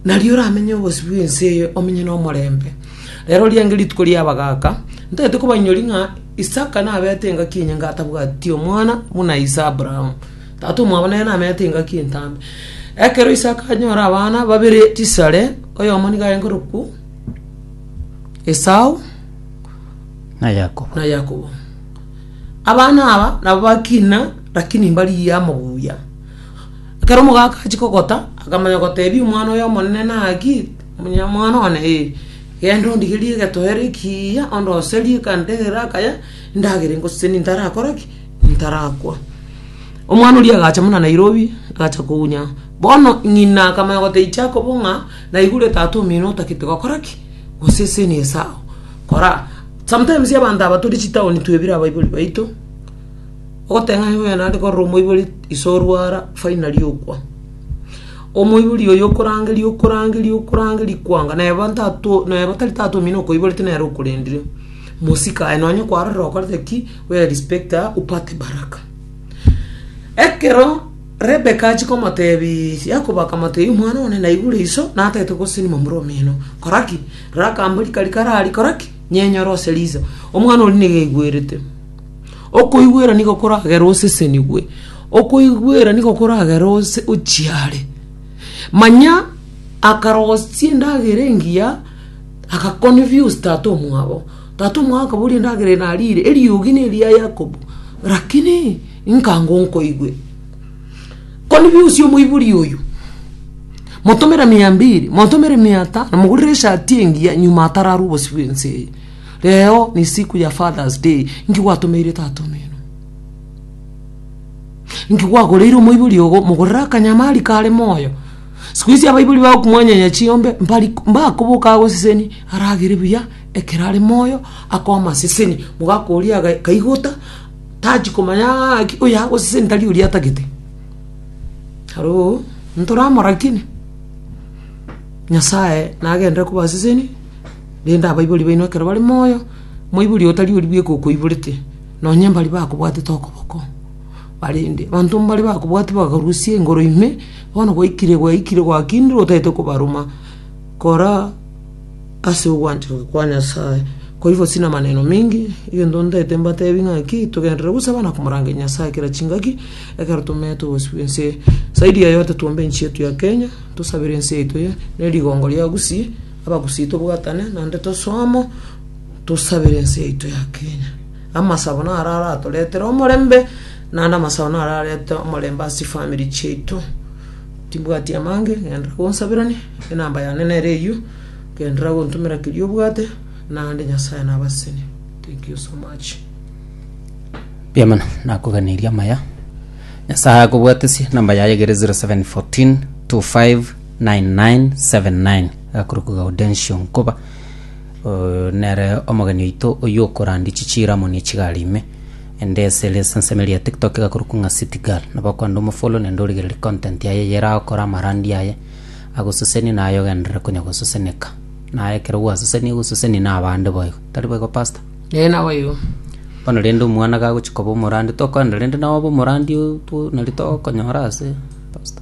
Nario oramenye obosio bw'ense eye omenye nomorembe. Reero riange rituko ri'abagaaka, ntagete kobainyori ng'a Isaka nabeete engaki enyinge atabwati omwana buna ise Abraham, tata omwabo nere nameete engaki entambe. Ekero Isaka anyora abana babere chisare, oyomo nigo agenkorokwu Esau, na Yakobo. na Yakobo. Abana aba nabo bakina, rakini mbarigia amobuya. Ekero omogaka achia kogota, akamanya gotebia omwana oye omonene naki, omonyamwana one ee, genda ondigerie egetoero ekiiya, ondoserie ekanta egere akaya, endagera engosesenie ntarakore ki? ntarakwa. Omwana oria agacha buna Nairobi, agacha kounya. Bono ng'ina akamanya gotebia Jacob ng'a naigure tata omino otagete gokora ki? gosesenia esao. Kora, sometimes abanto aba tore chitaoni twebire abaibori baito. Ogoteng'ena ng'a onye naende korora omoibori ise orwara finally okwa. Omoibori oyo okorangeria okorangeria okorangeria kwanga na eba ntato na eba tari taata omino okoiborete nere okorendire. Mosika aye nonye kwarorire okorete ki we respect her upate baraka. Ekero Rebecca achia komotebi Jacob akamotebi omwana one naigure iso natagete goseseni momura omino. Kora ki? Rora akambori karia karari kora ki? Nyenyora ose riso. Omwana oria nigo aigwerete. Okoigwera nigo koragere osesenigwe, okoigwera nigo koragere ose ochiare. Manya akarosia endagera engiya, aka confuse tata omwabo. Tata omwabo akaboria endagera eye narire? Eriogi neri ya Yakobo, rakini nkango nkoigwe. Confuse omoibori oyo, motomere mia mbiri, motomere mia tano, mogorere eshati engiya, nyuma atararwe obosio bw'ense eye. Reo ni siku ya Father's Day, inki gwatomeire tata omino? Inki gwagoreire omoibori ogo? Mogorere akanyama ari kare moyo. Siku ici abaibori ba okumwanyanya chiombe mbari mbakoboka agoseseni aragere buya ekero are moyo akoama aseseni mogaka oria aga kaigota tachi komanya ng'a ng'aki oyo agoseseni tari oria atagete. Hallo, ntoramoraki? Nyasaye nagenderere kobaseseni. Rende abaibori baino ekero bare moyo, moibori otari oria bweka okoiborete, nonye mbari bakobwatete okoboko, barende abanto mbare bakobwati bakarusia engoro ime, bono gwaikire gwaikire gwakindire otagete kobaroma, kora ase ogwanchoka kwa Nyasaye. Koigo sina maneno mingi, egento ntagete mbatebi ng'aki, togenderere gosaba na komorangeria Nyasaye kera chingaki, ekero tomeete ogosibwa ense. Zaidi ya yote tuombe enchi yetu ya Kenya, tosabere ense yaito eye, ne rigongo ria Gusii. Abagusii tobwatane nande tosomo tosabere ense yaito ya Kenya. Amasabo naro aratoretere omorembe naende amasabo naro ararete omorembe ase chifamiri chiaito. Timbwati amange genderera gonsaberania enamba yane nere eyio genderera gontomera keria obwate naende Nyasaye nabasesenie. Thank you so much. Mbuya mono nakoganeria amaya nyasaye akobwatesie namba yaye egere 0714 25 9979 gakorokwa Gaudensio nkoba, eh, nere omogeni oito oy'okorandia chichiiramo ne chigari ime, ende ase ere esensemo eria ya TikTok gakorokwa ng'a City Girl. Nabo okwanda omofollow naende origererie content yaye eye erakore amarandi aye, agososenie naye ogenderere konya gososeneka. Naye ekero gwasoseniwe gososeni na abande bo igo, tari boigo pastor? Ee, naboigo. Bono rende omwana gagochia koba omorandi, tokoenda rende nawe obe omorandi o- to nari togokonyora ase, pastor.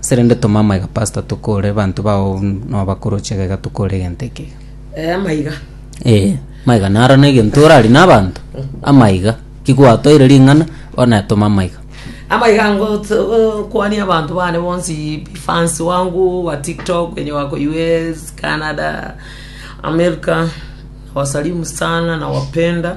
Ase rende toma amaiga pastor tokore abanto bao nobakoroche egega tokore egento ekega. Eh, amaiga. Eh, amaiga naro na egento orarie na abanto. Amaiga. Kigwatoire ring'ana bono etoma amaiga. Amaiga ango kwania abanto bane bonsi bi fans wangu wa TikTok wenye wako US, Canada, America. Nawasalimu sana nawapenda.